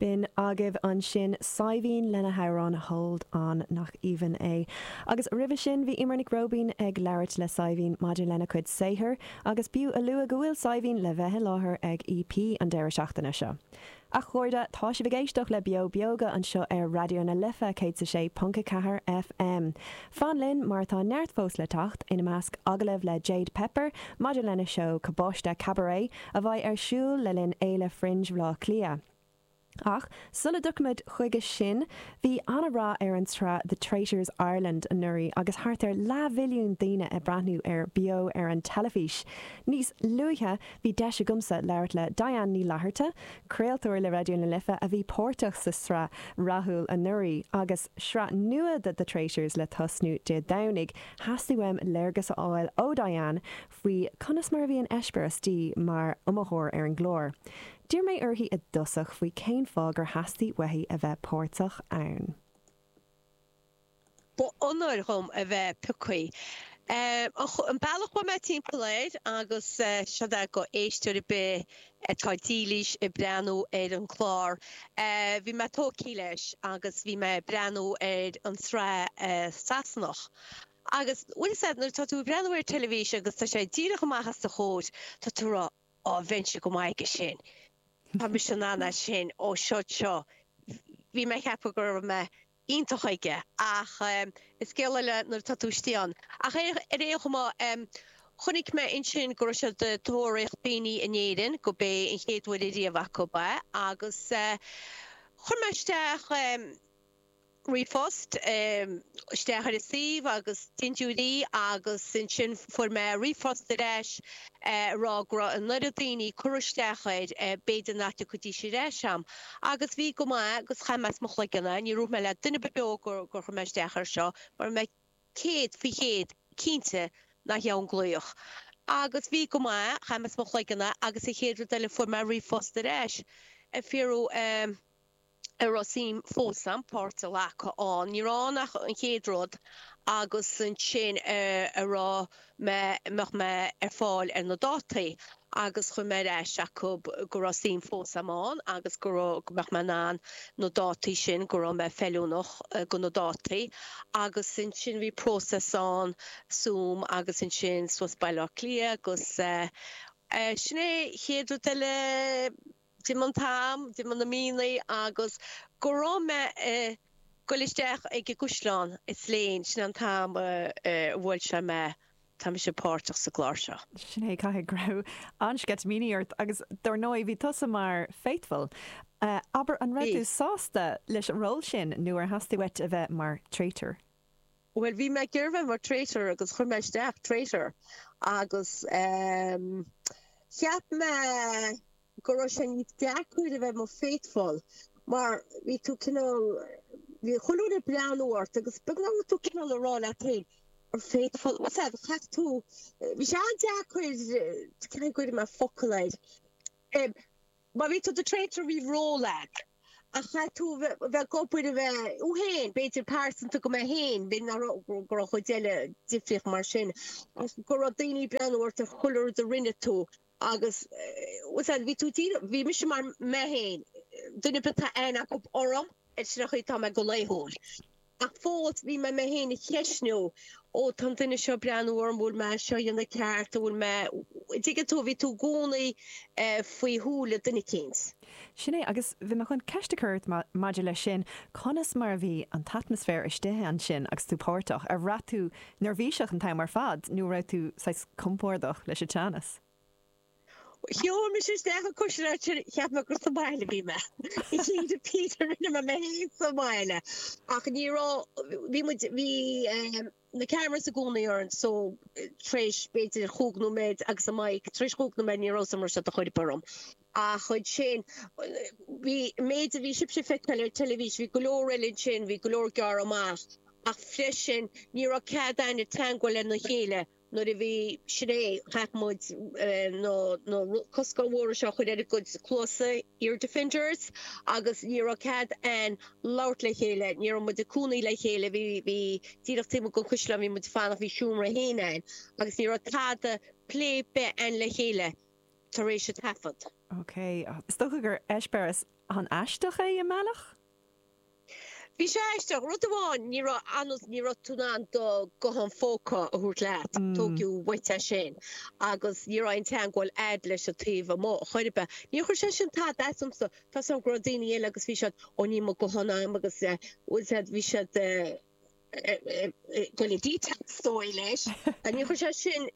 B'in agaibh ansin Saidhbhín lena hamhrán 'Hold On'. Nach aoibhinn é? Agus roimhe sin bhí Eimear Nic Róibín ag labhairt le Saidhbhín maidir lena cuid saothair agus b'fhiú a lua go bhfuil Saidhbhín le bheith i láthair ag EP an deireadh seachtaine seo. A chairde, tá sibh ag éisteacht le Beo Beoga anseo ar Raidió na Life 106.4 FM. Fan linn mar tá neart fós le teacht, ina measc agallamh le Jade Pepper maidir lena seó Cabáiste Cabaret, a bheidh ar siúl le linn Fhéile Fringe Bhleá Cliath. Ach sula dtiocfaimid chuige sin, bhí an-rath ar an tsraith The Traitors Ireland anuraidh agus thart ar leathmhilliún daoine ag breathnú air beo ar an teilifís. Níos luaithe, bhí deis agamsa labhairt le Diane Ní Fhlatharta, craoltóir le Raidió na Life a bhí páirteach sa tsraith rathúil anuraidh. Agus sraith nua de The Traitors le tosnú Dé Domhnaigh, theastaigh uaim léargas a fháil ó Diane faoi conas mar a bhí an t-eispéireas di mar iomaitheoir ar an gclár. D'iarr mé uirthi i dtosach faoi cén fáth gur theastaigh uaithi a bheith páirteach ann. Ba onóir dhom a bheith piocthaí. An bealach a chuaigh mé timpeall air, agus sé seo go éisteoir ar bith atá dílís ag breathnú ar an gclár, bhí mé tógthaí leis agus bhí mé ag breathnú ar an sraith Sasanach Agus bhfuil fhios ad, nuair atá tú ag breathnú ar teilivisean agus tá sé díreach amach os do chomhair, tá tú ag rá, Á, bheinnse go maith ag sin. Tá mise in ann ag sin. Ó, siúd seo. Bhí mé ag ceapadh go raibh mé iontach aige. Ach is scéal eile nuair atá tú istigh ann. Ach ar aon chuma, chonaic mé ansin go raibh siad ag tóraíocht daoine in Éirinn, go b'é an chéad uair ariamh acu é, agus chuir mé isteach, ríomhphost isteach ar an suíomh agus dindiúirí agus ansin fuair mé ríomhphost ar ais ag rá go raibh an oiread daoine curtha isteach air b'fhéidir nach dtiocfaidís ar ais a'm agus bhí go maith agus chaith mé as mo chloigeann é, níor dhúirt mé le duine ar bith gur chuir mé isteach air seo mar bhí mé céad faoi chéad cinnte nach dheamhan glaoch agus bhí go maith, chaith mé as mo chloigeann é agus an chéad rud eile fuair mé ríomhphost ar ais ag fiafraí eh. an raibh suim fós a'm páirt a ghlacadh ann, ní raibh ann ach an chéad rud agus ansin an raibh mé, an mbeadh mé ar fáil ar na dátaí agus chuir mé ar ais acu go raibh suim fós a'm ann agus go raibh, go mbeadh mé in ann na dátaí sin, go raibh mé feiliúnach do na dátaí agus ansin bhí process ann Zoom agus ansin suas Baile Átha Cliath agus eh, sin é, chéad rud eile. d'imigh an t-am, d'imigh na míonna agus go raibh mé ag goil isteach ag an gcaisleán i Slane, sin an t-am a bhuail sé mé, tá mise páirteach sa gclár seo. Sin é, caithfidh go raibh an-sceitimíní ort agus dár ndóigh bhí tusa mar Faithful. Abair, an raibh tú sásta leis an ról sin nó ar theastaigh uait a bheith mar Traitor? Bhuel, bhí mé ag iarraidh bheith mar traitor agus chuir mé isteach traitor agus cheap mé go raibh sé níos deacair a bheith mar faithful mar bhí tú cineál, bhí chuile dhuine ag breathnú ort agus beagnach raibh tú cineál ag rá leat féin, mar faithful, what's that? Chaith tú, bhí sé an-deacair, cén chaoi a gcuirfidh mé focal air? Má bhí tú i do Traitor bhí ról a'd, ach chaithfidh tú a bheith ag obair a bheith thú féin, b'fhéidir pearsantacht go mbeidh féin, b'fhéidir nach raibh, go raibh chuile dhuine difriúil mar sin, ach go raibh daoine ag breathnú ort ar chuile rud a rinne tú agus was that bhí tú díreach, bhí mise mar mé féin, duine ar bith atá aithne acu orm, ach sin an chaoi a tá mé go laethúil. Ach fós, bhí mé mé féin a cheistiú, ó, tá an duine seo ag breathnú orm, bhfuil mé á seo a dhéanamh ceart, an bhfuil mé, an dtuigeann tú, bhí tú i gcónaí faoi shúile duine eicínt. Sin é, agus bhí mé chun ceist a chur ort maidir leis sin, conas mar a bhí an t-atmaisféar istigh ansin agus tú páirteach, a' raibh tú neirbhíseach an t-am ar fad nó a' raibh tú saghas compordach leis a' teannas? Shiúil mise isteach sa gcaisleán, cheap mé gur sa mbaile a bhí mé. Bhí, díreach rinne mé mé fhéin sa mbaile ach ní raibh, bhí muid, bhí ehm na cameras i gcónaí orainn so tar éis b'fhéidir chúig nóiméad agus an mic, tar éis chúig nóiméad ní raibh fhios agam raibh sé dhá chur orm ach ansin bhí, an méid a bhí sibhse ag feiceáil ar an teilifís bhí go leor eile ansin, bhí go leor gearradh amach ach freisin ní raibh cead a'inn teagmháil lena chéile. Nuair a bhí sin réidh, chaith muid na cluasáin mhóra seo a chur ar ár gcuid cluasa, ear defenders, agus ní raibh cead a'inn labhairt le chéile. Ní raibh muid ag cónaí le chéile, bhí díreach taobh amuigh den chaisleán a bhí muid ag fanacht, bhí seomra féin a'inn, agus ní raibh tada, plé ar bith a'inn le chéile tar éis an taifead. Ok, is dócha gur eispéireas an-aisteach é i mbealach? Bhí sé aisteach. Rud amháin, ní raibh analt, ní raibh tú in ann do guthán phóca a thabhairt leat, tóigeadh uait é sin, agus ní raibh aon teangmháil a'd leis an taobh amuigh chor ar bith. Níor chuir sé sin tada as domsa. Tá a fhios a'm go raibh daoine eile agus bhí siad, ó níl mo guthán a'm agus bhfuil sé, bhí siad ag goil totally astray leis. Níor chuir sé sin,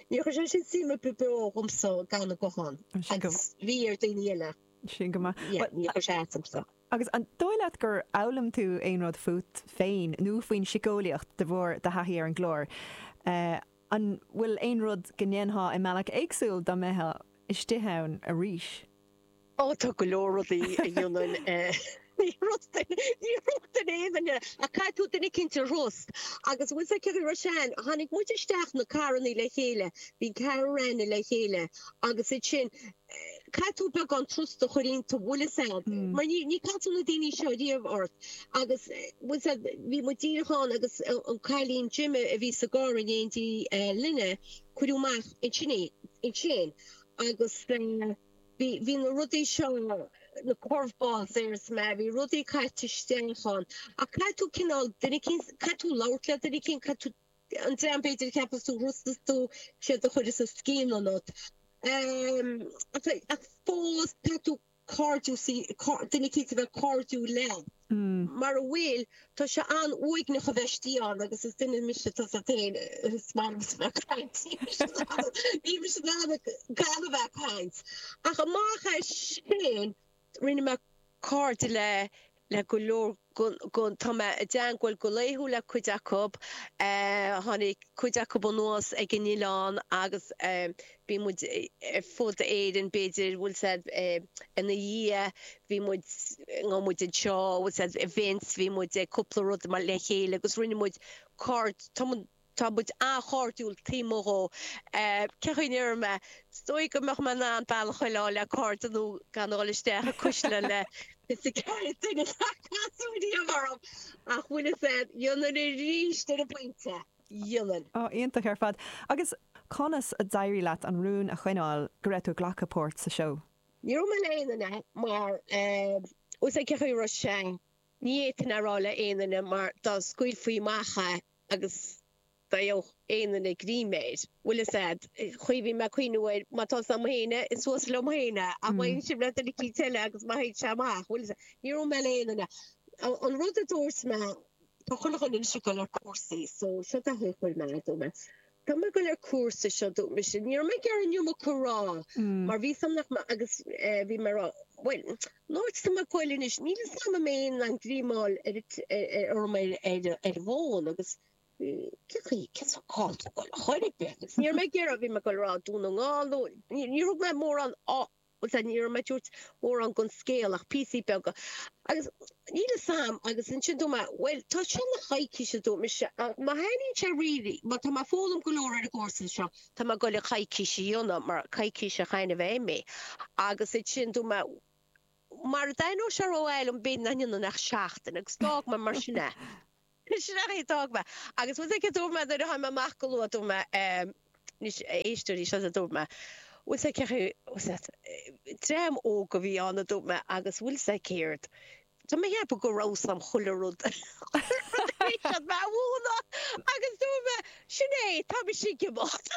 níor chuir sé sin suim ar bith beo ionamsa gan an guthán, agus bhí ar dhaoine eile. Sin go maith. Yeah, níor chuir sé as dom so. Agus an dóigh leat gur fhoghlaim tú aon rud fút féin nó faoin siceolaíocht de bharr do thaithí ar an gclár? An bhfuil aon rud go ndéanfá i mbealach éagsúil dá mbeitheá istigh ann arís? Ó, tá go leor rudaí a dhéanfainn ní thrustfainn aon duine ach caithfidh tú duine eicínt a thrust. Agus bhfuil 's a'd cé chaoi a raibh sé ann, tháinig muid isteach sna carrannaí le chéile, bhí ceathrar againn le chéile agus iad sin, caithfidh tú beagán trusta a chur iontu bhfuil fhios a'm mar ní níor casadh na daoine seo riamh ort agus bhfuil 's a'd bhí muid díreach ann agus an cailín Jemma a bhí sa gcarr in éindí linne cuireadh amach í sin ansin agus bhí bhí na rudaí seo na curveballs ar is mé bhí rudaí caite isteach ann ach caithfidh tú cineál duine eicínt caithfidh tú labhairt le duine eicínt caithfidh tú an dream b'fhéidir a cheapas tú a thrustas tú siad a chuireas an scian ionat ach fós tá tú cairdiúil sí duine eicínt a bheith cairdiúil leat mara bhfuil tá sé an-uaigneach a bheith istigh ann agus is duine mise tá 's a'd féin is maith liom a bheith ag caint níl mise in ann níl mise in ann gan a bheith ag caint ach amach as sin Rinne mé cairde le le go leor Tá mé i dteagmháil go laethúil le cuid acu. Tháinig cuid acu anuas ag an oileán agus bhí muid ar fud Éireann, b'fhéidir, bhfuil 's a'd ina dhiaidh, bhí muid nó muid anseo, bhfuil 's a'd events, bhí muid ag cúpla rud mar le chéile agus rinne muid cairde. Tá muid an-chairdiúil taobh amuigh dhó. Cé chaoi a ndéarfaidh mé, is dóigh go mbeadh mé in ann béal a choinneáil le cairde nó gan a dhul isteach i gcaisleán le fiche 's a ceathair duine nár casadh riamh orm. Ach bhfuil fhios a'd, dhéanfainn aríst ar an bpointe, dhéanfainn. Ó, iontach ar fad. Agus conas a d'éirigh leat an rún a choinneáil go raibh tú ag glacadh páirt sa seó? Níor dhúirt mé le aon duine mar, bhfuil 's a'd cé chaoi a raibh sé, ní fhéadfainn é a rá le aon duine mar dá scaoilfí amach é, agus dá bhfaigheadh aon duine greim air, bhfuil 's a'd, choinnigh mé ag cuimhniú air, má tá's a'm féin é, is suas liom féin é, ach má théann sé le duine eicínt eile agus má théann sé amach, bhfuil 's a'd, níor dhúirt mé le aon duine. An rud a dúirt mé, tá chuile dhuine anois ag dul ar chúrsaí, so seo an chaoi a chuir mé, a dúirt mé. Tá mé ag goil ar cúrsa seo a dúirt mise. Ní raibh mé ag iarraidh an iomarca a rá mar bhí 's a'm nach maith agus bhí mé ag rá, bhuel, ná ag sam ag goil anois. Níl 's a'm am aon am dríomáil orm ar an bhfón agus cé sa gcáil tú ag goil a chur ag beirt? Agus ní raibh mé ag iarraidh, bhí mé ag goil ar rá Dún na nGall nó, níor thug mé mórán Bhuel, sea, ní raibh mé ag tabhairt mórán gon scéal ach píosaí beaga. Agus níl 's a'm, agus ansin dúirt mé, bhuel, tá seo le coicís, a dúirt mise, ach má thaitníonn sé really, má tá mé ag foghlaim go leor ar an gcúrsa seo, tá mé ag dul le coicís a dhéanamh, mar coicís a chain mé imí. Agus ansin dúirt mé, mara dtaitneodh sé rómhaith liom, b'fhéidir nach ndéanfainn ach seachtain, agus d'fhág mé mar sin é. Sin é, d'fhág mé. Agus bhfuil 's a'd céard, dúirt mé, nuair a tháinig mé amach go luath, dúirt mé, eh, anois, istigh anseo a dúirt mé, bhfuil 's a'd céard, eh, dream óg a bhí ann, a dúirt mé, agus bhfuil 's a'd céard, tá mé ag ceapadh go raibh 's a'm chuile rud, chuile rud a bhí siad mé a mhúineadh agus dúirt mé, sin é, tá mise ag imeacht.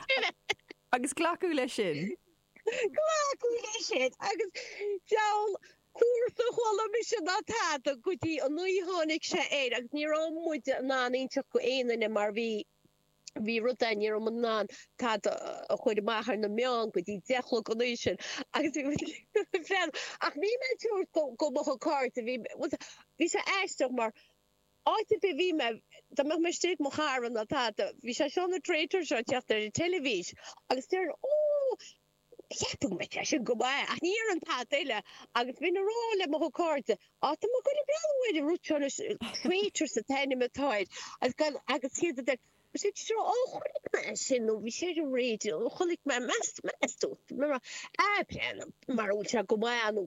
Sin é. Agus glacadh leis sin. Glacadh leis sin agus dabhal cúrsa a chuala mise ná tada go dtí an uair tháinig sé air agus ní raibh muide in ann inseacht go aon duine mar bhí bhí rud é ní raibh muid in ann tada a chur amach ar na meáin go dtí deich a chlog an oíche sin agus bhí feall ach ní raibh mé ag tabhairt go go mo cairde bhí bhí sé aisteach mar Áit ar bith bhí mé, dá mbeinn istigh ag mo chara ná tada, bhí sé seo na Traitors ag teacht ar an teilifís agus déarfainn, Ó, breathnaíonn sé sin go maith, ach ní dhéarfainn tada eile agus bheinn ag rá le mo chairde, Á, tá mé ag dul a breathnú ar an rud seo anois, Traitors an t-ainm atá air, agus iad a deir, Ó, sin Traitors, ó, chonaic mé é sin nó bhí sé ar an raidió nó chonaic mé, meas tú, meas tú, Á, breathnaíonn mar a bheadh sé go maith nó.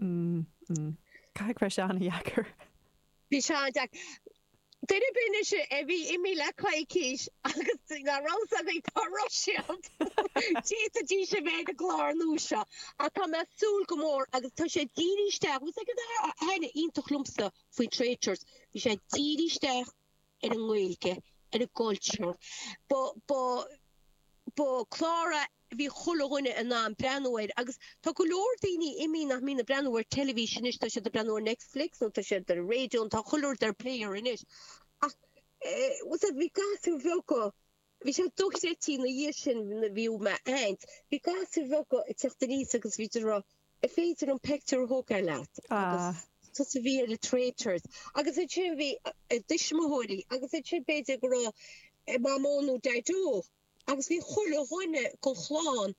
Mmm. Caithfidh go raibh sé an-deacair. Bhí sé an-deacair. Duine muinteartha a bhí imní le coicís agus nach raibh 's againn tá siad le díotsa a bheith ina gclár nua seo ach tá mé ag súil go mór agus tá sé ag díriú isteach, bhí sé ag an rud iontach liomsa faoin Traitors, bhí sé ag díriú isteach. ar an nGaeilge, ar an gcultúr. Ba, ba, ba chlár a bhí chuile dhuine in ann breathnú air agus tá go leor daoine inniu nach mbíonn ag breathnú ar teilifís anois, tá siad ag breathnú ar Netflix nó tá siad ar an raidió nó tá chuile rud ar Player anois ach, eh, bhuel, bhí gasúir bheaga. Bhí sé dochreidte ina dhiaidh sin nuair a bhí mé ag caint, bhí gasúir bheaga ag teacht aníos agus bhí siad a' rá an féidir liom peictiúr a thógáil leat agus tusa a bhí ar a' Traitors agus ansin bhí a dtuismitheoirí agus ansin b'fhéidir go raibh a mamó nó daideo agus bhí chuile dhuine gon chlann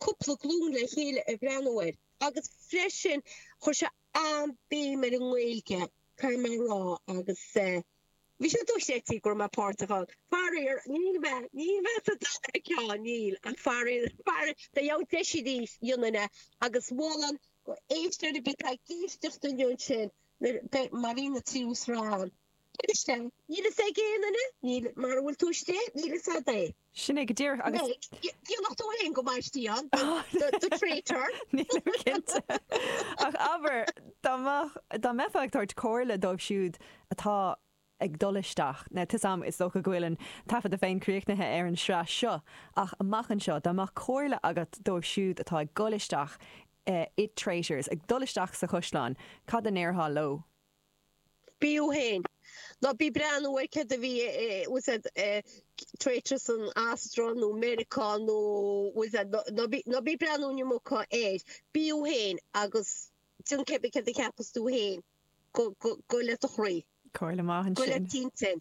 cúpla glún le chéile ag breathnú air agus freisin chuir sé an-bhéim ar an nGaeilge, caithfidh mé a rá agus eh. Bhí sé dochreidte go raibh mé páirteach ann. Faraor, níl mé, níl mé sa dara ceann, níl, ach faraor, faraor, dá mbeadh, dhéanfainn aríst é agus mholainn go éisteoir ar bith atá ag éisteacht inniu ansin nuair a, má bhíonn an tríú sraith ann. Níl fhios a'm. Níl fhios ag aon duine, níl, mara bhfuil tú istigh, níl fhios a'd é. Sin é go díreach agus. Meg, Déanfaidh tú fhéin go mbaistí ann, the traitor! Nílim cinnte. Ach abair, dá mbeadh, dá mbeifeá ag tabhairt comhairle dóibh siúd atá ag dul isteach, now tá a fhios agam is dócha go bhfuil an taifeadta féin críochnaithe ar an sraith seo, ach amach anseo, dá mbeadh comhairle agat dóibh siúd atá ag dul isteach, The Traitors, ag dul isteach sa Chaisleán, cad a ndéarfá leo? b'fhiú féin. Ná bí breathnú ar céard a bhí i, what's that, Traitorous in Austro nó Meiriceá nó what's that, ná bí, ná bí breathnú inniu muca air. Bí thú féin agus déan céad céard a cheapas tú féin go, go, go le do chroí. Comhairle maith go le ansin. d'intinn.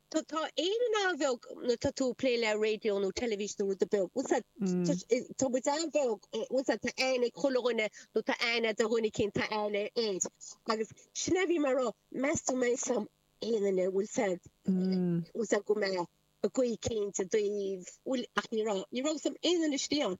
Ó tá Éirinn an-bheag nuair tá tú ag plé le raidió nó teilifís nó rudaí beag. Bhuel sa tá muid an-bheag bhuel sa tá aithne ag chuile dhuine nó tá aithne ar dhuine eicínt a bhfuil aithne air. Agus sin a bhí mé ag rá meas tú an mbeidh aithne agam ar aon duine bhuel sa bhuel sa go mbeadh ar chaoi eicínt sa taobh bhuel ach ní raibh ní raibh a fhios agam aon duine istigh ann.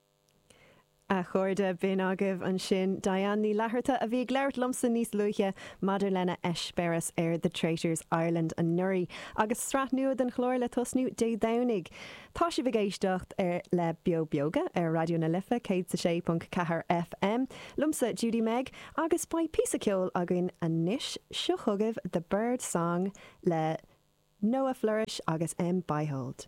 A chairde, b'in agaibh ansin Diane Ní Fhlatharta a bhí ag labhairt liomsa níos luaithe maidir lena heispéireas ar The Traitors, Ireland anuraidh agus sraith nua den chlár le tosnú Dé Domhnaigh. Tá sibh ag éisteacht le Beo Beoga ar Raidió na Life 106.4 FM, liomsa Judy-Meg, agus beidh píosa ceoil againn anois. Seo chugaibh The Bird Song le Noah Floersch agus Em Beihold.